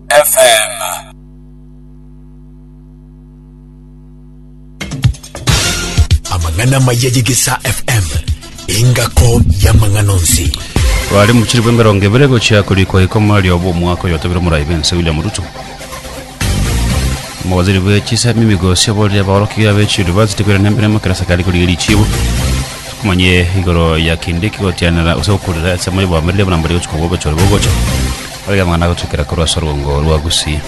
FM. amang'ana maya yegesa fm engako y'amang'ana onsi Rwari muchiri bw'emerongo ebere gochia korikwa ikoma riobo omwaka oyotobire omorai bense William Ruto. Omowaziri bwe chisemi migosi oborire abaorokia be chi university kwera nembere makerasa kari korigia richibo. Kumanye igoro ya kindiki gotianera ose gokurira ensemo y'oboamereri buna mbari gochika obwo obochore bogocha. Oria mang'ana agotuikera korwa ase orwongo rwa Gusii.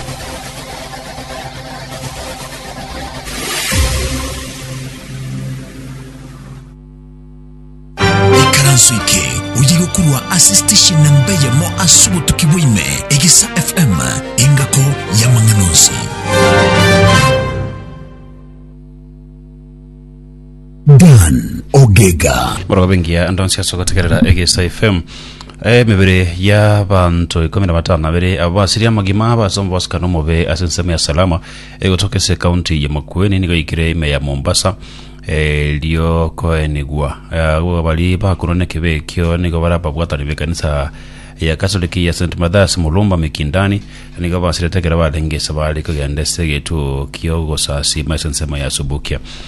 Ikaranso eke oye gokorwa ase station namba eyemo ase obotuki bwaime, Egesa FM, engako y'amang'ana onsi. Dan Ogega. Borobe ngiya ndonsi ase gotegerera Egesa FM. Emebere y'abanto ikomi na batano abere abo basirie amagima abase omobasikano omobe ase ensemo ya Salama egotoka ase ekaunti ya Makueni nigo yaikire ime ya Mombasa erio koenigwa agwo baria bakorwa n'ekibe ekio nigo bare ababwatani b'ekanisa ya Katoliki ya St Mathias Mulumba Mikindani nigo basirete ekero barenge ase bare kogenda ase egetuo ki'ogosasima ase ensemo ya Subukia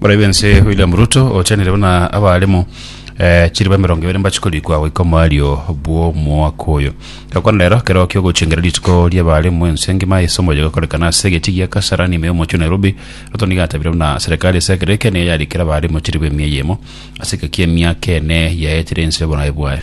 Moraibi ense William Ruto ochenire buna abaremo eh, chiriba emerongo ebere mbache korikwa goika omoario bw'omwaka oyo. Gakwana rero kero kiogochengera rituko ri'abaremo ense ngima ase omoyo gokorekana ase egechii gia Kasarani ime y'omochie o Nairobi. Ruto nigo atabire buna serikali ase ekero eke nigo yarikera abaremo chiriba emia eyemo ase egeka ki'emiaka ene yaetire ense y'obonae bwaye.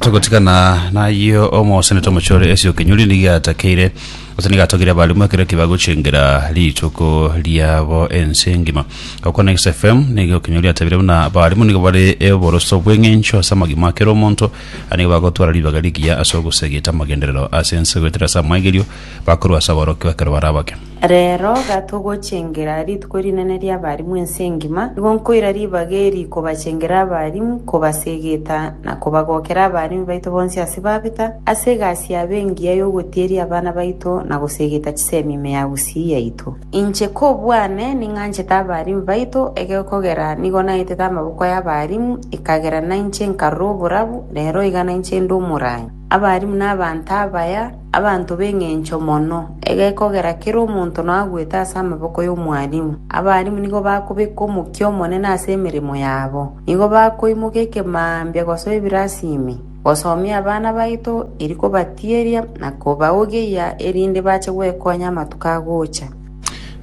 Togotigana nayio omosenete omochore Esio Kinyuri nigo atakeire gose nigo atogire abaalimu ekero kibagochengera rituko riabo ense engima. Gokwana Next FM nigo Kinyuri atabire buna abaalimu nigo bare oboroso bw'eng'encho ase amagima a kera omonto na nigo bagotwara ribaga rigiya ase ogosegeta amagenderero ase ense goetera ase amaigerio bakorwa ase aborokigwa ekero bare abake. Reero iga togochengera rituko rinene ri'abarimu ense engima, nigo nkoira ribaga eri kobachengera abarimu, kobasegeta, na kobagokera abaremi baito bonsi ase babeta, ase egasi yabo engiya y'ogotieria abana baito na gosegeta chisemi ime ya gusii yaito. Inche kobwane ning'anchete abaremi baito, egekogera nigo naetete amaboko y'abarimu, ekagera nainche nkarora oborabu, reero iga nainche inde omoranyo. Abarimu nabanto abaya, abanto b'engencho mono, egekogera kera omonto noagwete ase amaboko y'omwarimu. Abarimu nigo bakobeka omokia omonene ase emeremo yabo. Nigo bakoimoka ekemambia gosoa ebirasimi, gosomia abana baito, eri kobatieria na kobaogeyia erinde bache gwekonya amatuko agocha.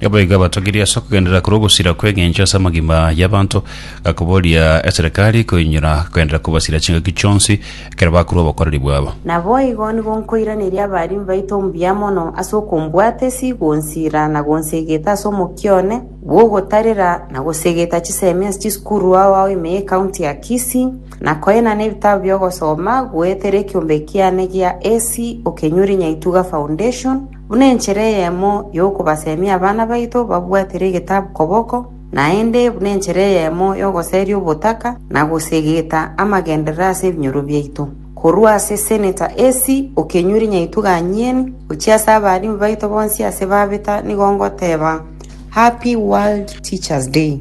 Naboigo abatogirie ase okogenderera korwa ogosira kw'engencho ase amagima y'abanto, gakoboria eserekari koinyora kogenderera kobasira chingaki chionsi ekero bakorwa obokoreri bwabo. Naboigo nigo nkoiraneria abarimi baito mbuya mono ase okombwata esi, gonsira na gonsegeta ase omokia one bw'ogotarera, na gosegeta chisemi ase chisukuru ao ao ime y'Ekaunti ya Kisii, na koenana ebitabu bi'ogosoma, goetera ekiombe kiane gia AC, Okenyori Nyaituga Foundation, Buna enchera eyemo y'okobasemia abana baito babwatire egetabu koboko, naende buna enchera eyemo y'ogoseria obotaka na gosegeta amagenderero ase ebinyoro biaito. Korwa ase Seneta AC. Okenyori Nyaitwe Ganyeni, gochia ase abaalimu baito bonsi ase babeta nigo ngoteba, Happy World Teachers Day.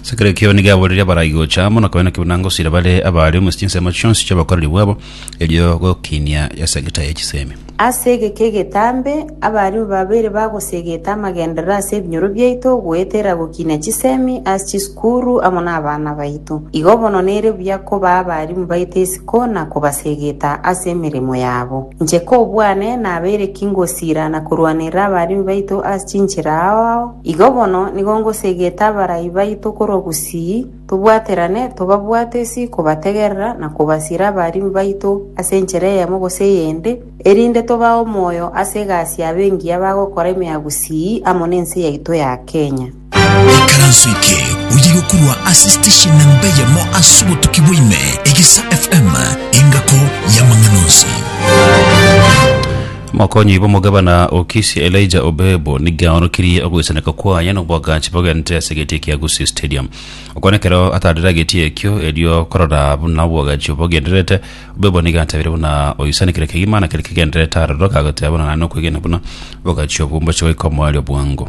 Ase kera ekio nigo aboririe abarai gocha amo, na koena kebuna ngosira bare abaare omwesi chinsemo chionsi chi'obokoreri bwabo, erio gokinia ase egeta ye chisemi. Ase egeka egetambe, abarimu babere bagosegete amagenderero ase ebinyoro biaito goetera gokinia chisemi ase chisukuru amo nabana baito. Igo bono nere buya koba abarimu baito isiko na kobasegeta ase emeremo yabo. Inche kobwane, nabere ki ngosira na korwanerera abarimu baito ase chinchera ao ao? Igo bono nigo ngosegete abarai baito korwa bosii, tobwaterane, tobabwate ase kobategerera na kobasira abaarimi baito ase enchera eyemo gose eyende, erinde tobae omoyo ase egasi yabo engiya bagokora ime ya bosii amo nense yaito ya Kenya. Ekaranso eke oyigo korwa ase station namba eyemo ase obotuki bwa ime, Egesa FM, engako y'amang'ana onsi. Mokonyi bw'omogabana o Kisii Elijah Obebo nigo aorokirie ogoisaneka kwaye n'oboagachi bogenderere ase egetia kia Gusii Stadium. Okwana ekero ataraire egetia ekio erio korora buna oboagachi obwo bogendererete, Obebo nigo atabire buna oisanekire kegima na kere kegendererete aroro, kagoteba buna naende nokwegena buna oboagachi obwo mboche goika omoerio bwango.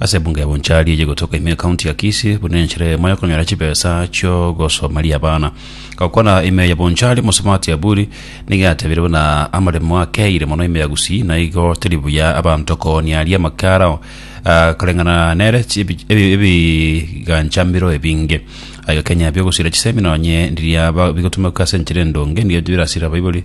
Ase ebungo ya Bonchari eye gotoka ime County ya Kisii buna enchera eyemo ya konyora chibesa chiogosomaria abana. Gokwana ime ya Bonchari Mosomati Aburi nigo yatebire buna amaremo akeire mono ime ya Gusii na igo teri buya abanto koonia aria amaka arao ah, koreng'ana nere chi- ebi- ebi- ebiganchamero ebinge. Agakenya biogosuera chisemi nonye ndiria ba- bigotumeka ase enchera endonge ndiria birasira abaibori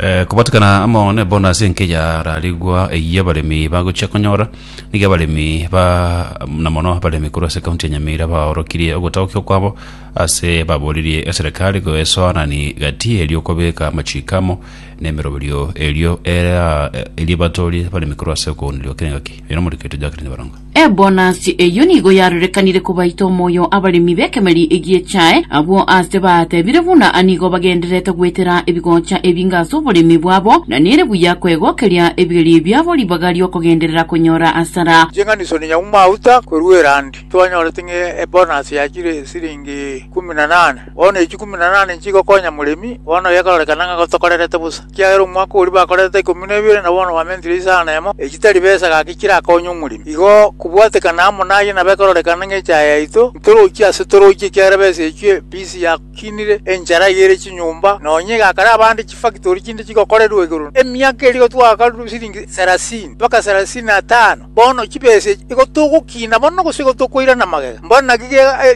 Eh, kobatikana amo nebonus enke yararigwa eyia abaremi bagochia konyora nigo abaremi ba na mono abaremi korwa ase kaunti ya nyamira baorokirie ogotagokia kwabo ase baboririe eserekari goesoanani gati erio kobeka amachiko amo na emeroberio erio era erie batorie abaremi korwa ase okooneria gokira engaki bino moriketo Jacqueline Barongo Ebonasi eyio nigo yarorekanire kobaita omoyo abaremi b'ekemeri egi'echae, abwo aase baatebire buna nigo bagendererete goetera ebigocha ebinge ase oboremi bwabo, na nere buya kwegokeria ebigeri biabo ribaga ri'okogenderera konyora asara. Ching'aniso ne nyaume mauta korwa Irandi. Twanyorete ng'a ebonasi ya chire siringi ikuminanane. Bono echi ikuminanane nchigokonya moremi, bono gekororeka ng'a gotokorerete bosa. Ekiagera omwaka oria bakorete ikomi na ebere, na bono bamentire isano na emo, echi tari besa gaki chirakonye omoremi. Igo kobwatekana amo naye nabe ekorerekana ng'a echaye yaito, ntorochie ase torochie, ekiagera besa echio embisi yakinire, enchara yaire chinyomba, nonya egakara abande chifakitori chinde chigokorerwa igoro. Emiaka eria igo twagakarwa siringi sarasini mpaka sarasini na etano. Bono chibese igo togokina mono, gose igo tokoirana magega? Mbwenu naki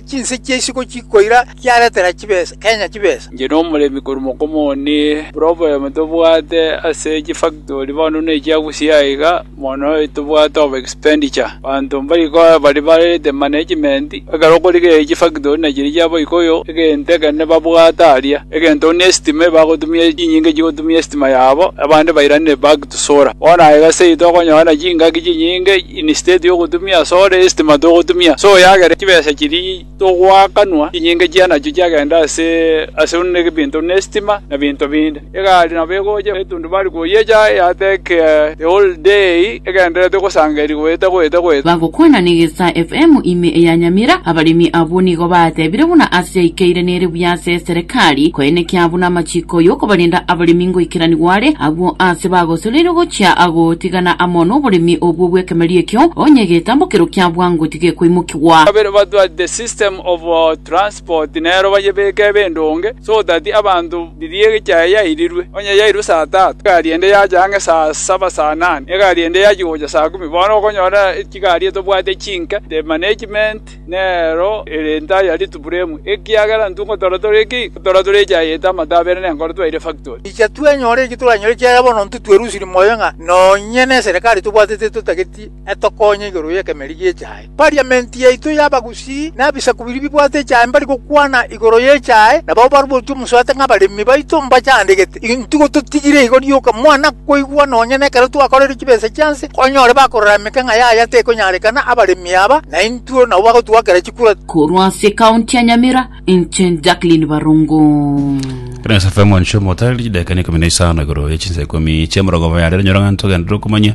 chinse chia isiko chikoira chiaretera Kenya chibesa? Inche nomoremi korwa mokoma one. Problem tobwate ase chifactori bono nechia Gusii aye iga, mono tobwate over expenditure. Abanto mbari korwa bari barete management, ekero okorigereria chifactori nachiri chia Abaikuyu, egento ekero nibabwate aria, egento buna estima ebagotumia chinyinga chigotumia estima yabo, abande bairanire back. Tsora. Bono aye gose seito okonyora chingaki chinyinge instead yogotumia ase ore estima togotumia ase oyagere chibesa chiri togoakanwa chinyinge chianachio chiagenda ase ase buna ebinto buna estima na binto binde. Egari nabo egocha etundubari koyecha eyatake the whole day egendererete gosanga eri goeta goeta goeta. Bagokwana Negesa FM ime eya Nyamira, abaremi abwo nigo baatebire buna ase yaikeire nere buya ase Serekari koenekia abwo namachiko y'okobarenda abaremi ngoikeranigwa are, agwo aase bagosoreirwe gochia gotigana amo noboremi obwo bw'ekemerio ekio, onye egetambo kerwo kia bwango tigekoimokigwa. Kabere batwate system of transport nero bayebeke ebe endonge so that abanto riria egecha eye yairirwe onye yairwe saa tatu egari ende yacha ang'e saa saba saa nane egari ende yachia gocha saa kumi bono okonyora chigari etobwate chinke the management Nero ere nta ya rituburemu, ekiagera intwe ngotora tore ki? Ngotora tore echaye ete amato abere nenkoro twaire factory. Incha twenyore eki toranyore ekiagera bono intwe twerusirie moyo ng'a nonye neserekari tobwatete etotageti etokonye igoro y'ekemeri gi'echaye. Parliament yaito y'abagusii na ebisaku biria bibwate echaye mbari gokwana igoro y'echaye, nabo barubotie omosuate ng'a abaremi baito mbachandegete. Intuko totigire igo rioka mwana koigwa nonya nekero twakorire chibesa chia nse, onyore bakorora emekeng'a yaya tekonyarekana abaremi aba, na intwe nabo bagotwakera chikura. Korwa ase ekaunti ya Nyamira, inche Jacqueline Barongo. Kina SFM one show motari dakika ni kumi na isano igoro ye chinsa ikomi chia emerongo mabere nyora ng'anto gende rokumanya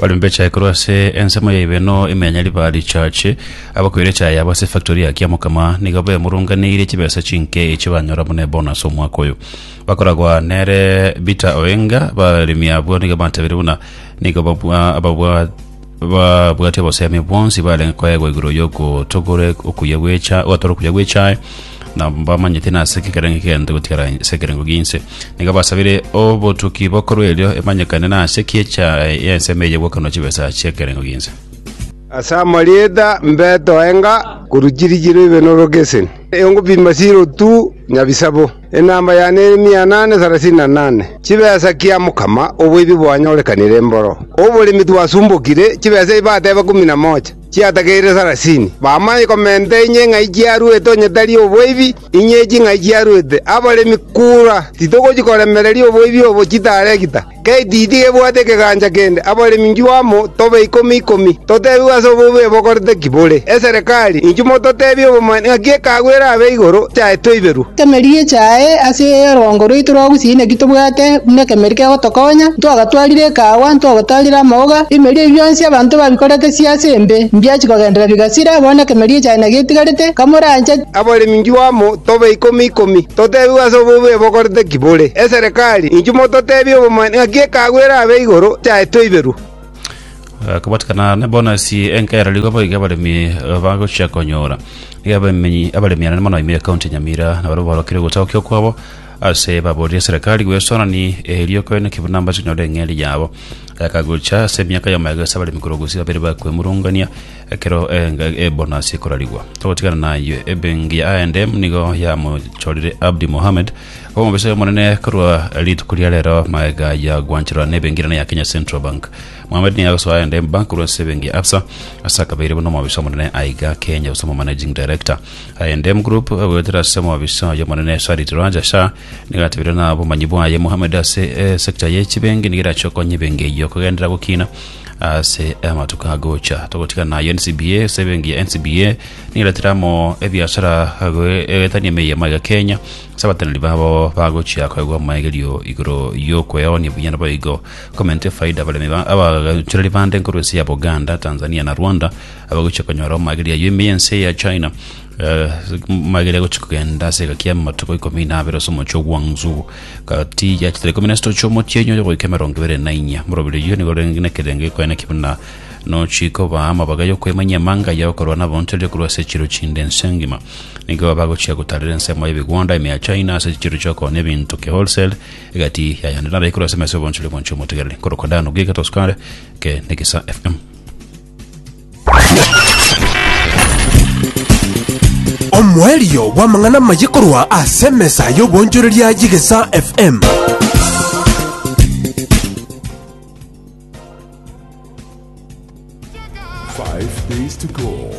Barembe echae korwa ase ensemo ya ibeno imenya riba richache abakoire echae yabo ase efactori ya Kiamokama nigo bemurunganeirie chibesa chinke echi banyora buna ebonus omwaka oyo bakoragwa nere Bita Oenga baremi abwo nigo batebirie buna nigo babwa ababwa babwate obosemi bwonsi barenge koegwa igoro y'ogotogora okuya gwecha ogotora okuya gwechae na mbamanyete nase ekerengo kegento gotigara ase ekerengo ginse nigo basabire obotuki bokorwa erio emanyekane nase ekiecha y'ensemo eye gwokenwa chibesa chi'ekerengo ginse Ase amarieta mbeto enga korwa chirichiro ibe norogeseni, eyongopima sirotu nyabisabo. Enamba yane ere mia inane sarasini na inane. Chibesa kia mokama oboibi bwanyorekanire mboro oboremi twasumbokire, chibesa ebi bateba ikomi na mocha, chiatageire sarasini. Bamanye komenta inye ng'ai chiaruete onye tari oboibi, inye echi ng'ai chiaruete, abaremi kura, titogochi koremereria oboibi obo chitaregita. Getiti gebwate ekegancha kende, abaremi inchuo amo tobe ikomi ikomi, totebigwe ase obobe bokorete ki bore. Eserekari, inchuo mototebie obomanyi ng'aki ekeago erabe igoro yaye toiberwe. Emeri echae ase orongo rwaito rwa gusii naki tobwate buna ekemeri kegotokonya, ntwagatwarire ekaagwa, ntwagotarire amaoga, emeeri eyio yonsi abanto babikorete sia ase embe, mbiachia kogenderera bigasira, bono ekemeri echae nagetigarete, kamoranche, Abaremi inchuo amo tobe ikomi ikomi, totebigwe ase obobe bokorete ki bore. Eserekari, inchuo mototebie obomanyi ng'aki ekeago erabe igoro chiaetwe iberwe. Kobatikana nebonasi enke yararigwe boigo abaremi bagochia konyora. Nigo abaremi abaremi anene mono ime ekaunti ya Nyamira nabarabwo barokire ogotagokia okwabo ase baborire eserekari gwesonani erio koine ki buna mbache konyora eng'eria yabo. Gakagocha ase emiaka y'omoegoso abaremi korwa gusii babere bakwemurungania Ekero enga e bonus ekorarigwa, togotigana nayio. Ebengi ya I&M nigo yamochorire Abdi Mohamed koba omobisa omonene korwa rituko ria rero magega ya gwancherwa na ebengi enene ya Kenya Central Bank. Mohamed nigo agosoa I&M Bank korwa ase ebengi ya Absa ase akabeire buna omobisa omonene aiga Kenya gose omomanaging director. I&M Group goetera ase omobisa oye omonene Sarit Raja Shah nigo atebire na obomanyi bwaye Mohamed ase eh, sector ye chibengi nigo erache okonya ebengi eyio kogendera gokina Ase amatuko agocha togotigana naye NCBA ase ebenki ya NCBA nigeretire amo ebiasara goetania emei yamaiga Kenya ase abateneneri babo bagochia koegwa amaegerio igoro y'okweoonia buya naboigo komenta efaida abaremi ba- abachoreri bande nkorwa ense ya Buganda, Tanzania na Rwanda abagochia konyora amaegerio ayio ime y'ense ya China eh, amaegerio agochia kogenda ase egaki y'amatuko ikomi na abere ase omochie o Guangzhou Gati ya chitara ikomi na isatu chi'omotienyi oyo goika emerongo ebere na inya, morobiri oyio nigo orenge nekerengo gikoeneki buna nochikobaa amabaga y'okoimanyia emanga aya okorwa nabonchoreria korwa ase echiro chinde ense engima. Nigo bagochia gotarera ensemo y'ebigwanda emea China ase chiro chi'okonya ebinto ki wholesale egati yayande narayi korwa ase emesa y'obonchoria bwanchia omotegereri. Nkorokwa Dano, Giga, Toscare, Ke, Nekisa FM. Omoerio bw'amang'ana amaye korwa ase emesa y'obonchoreria y'Egesa FM. Five days to go.